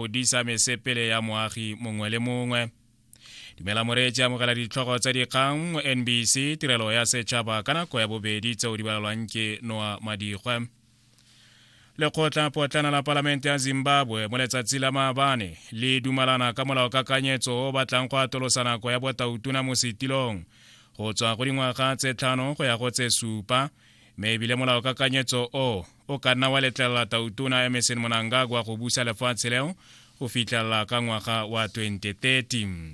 o disa mesepele ya moagi mongwe le mongwe dumela moreetsi amogela ditlhogo tsa dikgang mo nbc tirelo ya setšhaba ka nako ya bobedi tseo di balalwang ke noa madigwe lekgotlapotlana la palamente ya zimbabwe mo letsatsi la maabane le dumalana ka molaokakanyetso o batlang go atolosa nako ya botautona mo setilong go tswa go dingwaga tse tlhano go ya go tse supa mme ebile molao kakanyetso o o ka nna wa letlelela tautona emerson monangagwa go busa lefatshe leo go fitlhelela ka ngwaga wa 2030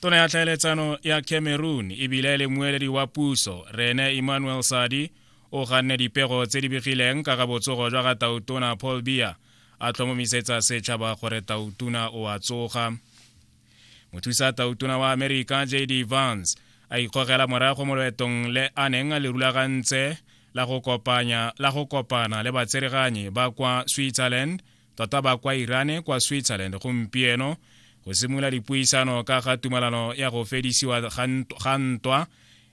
tona ya tlhaeletsano ya cameroon ebile e le moeledi wa puso rene emmanuel sadi o ganne dipego tse di begileng ka ga botsogo jwa ga tautona paul bia a tlhomomisetsa setšhaba gore tautona o a tsoga mothusa tautona wa amerika j d vance a ikgogela morago mo loetong le a neng a le rulagantse la go kopanya la go kopana le batsereganyi ba kwa switzerland tota ba kwa irane kwa switzerland gompieno go simolola dipuisano ka ga tumalano ya go fedisiwa ga ntwa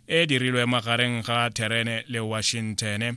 e dirilwe magareng ga therene le washington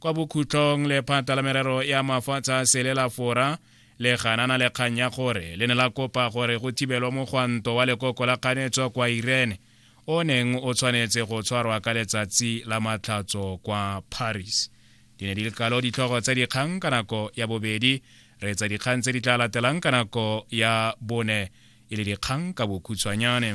kwa bokhutlong lephata la merero ya mafatshe a sele la fora le ganana le kgang ya gore le ne la kopa gore go thibelwa mogwanto wa lekoko la kganetso kwa irene o neng o tshwanetse go tshwarwa ka letsatsi la matlhatso kwa paris di ne di le kalo ditlhogo tsa dikgang ka nako ya bobedi re tsa dikgang tse di tla latelang ka nako ya bone e le dikgang ka bokhutshwanyane